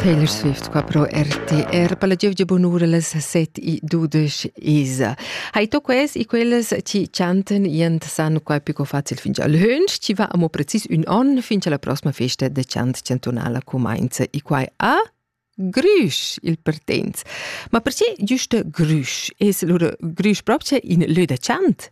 Taylor Swift qua pro RTR per la giovgia bonura las 7 e 12 isa. Hai to ques e quellas ci chanten jent san qua pico facil fin al hönsch, ci va amo precis un on fin la prossima festa de chant chantunala comenza e quai a Grüsch il pertens. Ma perché giusto Grüsch? Es lura Grüsch proprio in lö da chant?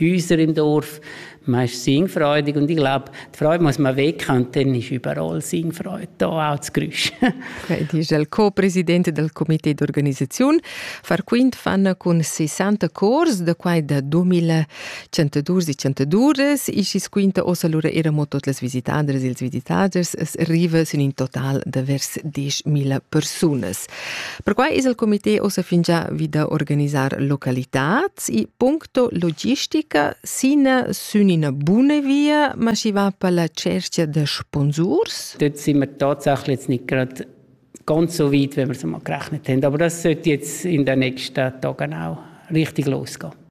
Häuser im Dorf, man ist singfreudig und ich glaube, die Freude muss man weg haben, dann ist überall Singfreude da auch das Geräusch. Die ist il co-presidente del comité d'organisation. Far quint fanno con 60 cors da quai da 2112-102 ist es quinta ossa lura era mo tot las visitadres e els visitaders es arriva sin in total de vers 10.000 personas. Perquai es il comité ossa fingià vi da organisar localitats e puncto logistica sina sün ina buna via, ma schi va per la cerchia da sponsurs? Dort sind wir tatsächlich nicht gerade ganz so weit, wie wir es mal gerechnet haben. Aber das sollte jetzt in den nächsten Tagen auch richtig losgehen.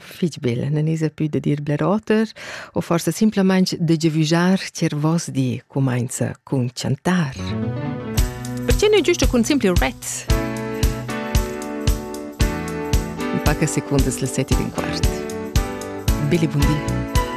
fich bel, non esa più da dir bler oter, o forsa simplamaing da giavüjar tier vos di cumainza cun chantar. Perché nu giusto cun simple ret? In paca secundas le sette e quart. Billy Bundi.